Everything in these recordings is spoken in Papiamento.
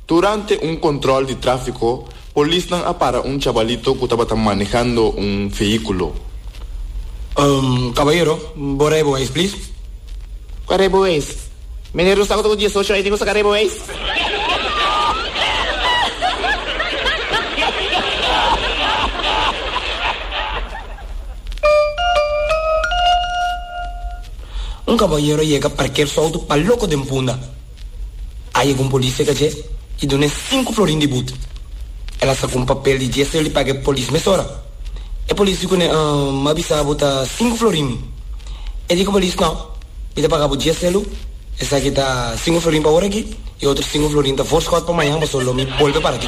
Durante un control di trafico, polisnan a para un chabalito cu tabata manehando un vehiculo. Caballero, bo rij bo wijs, please? Cu a rij bo wijs? Meneer Rosa cu ta cu diesocho aña tin cu sa ca rij bo wijs? Un kaboñero yega parker su outo pa loko den punda. A yega un polis seka dje i duna e sinku florin di but. El a saka un papel di djes rel i paga e polis mesora. E polis di kuné, Umm, mi a bisa bo ta sinku florin mi. E di ku polis, No, mi ta paga bo djes rel lu, esaki ta sinku florin pa ora aki i otro sinku florin ta voorschot pa mañan paso lo mi bolbe para aki.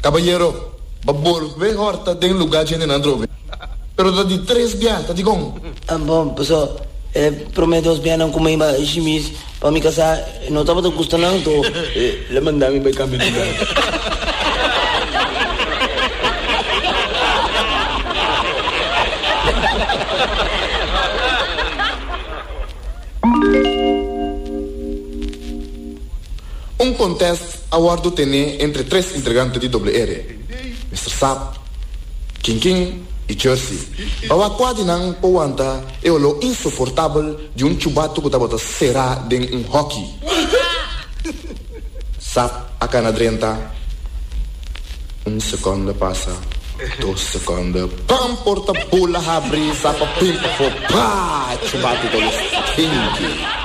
Kabayero, bo bolbe horta den luga dje hendenan drobe. Pero ta di tres bia, ta dikon? Bo, paso e prome dos bianan ku mi bai shimis pa mi kasá e no tabata gusta nan to. Lo manda mi bai kambia di lugar. Un contest a wordo tene entre tres entregante di Doble Ere, Mister Sap, King King y Jersey, pa wak cua di nan por wanta e oló insoportabel di un chubato cu tabata cera den un hockey. Sap a cana drenta, un seconda pasa, dos seconda, pam! Porta bula habri, Sap a pimpa fo, paa! Chubato ta los finki.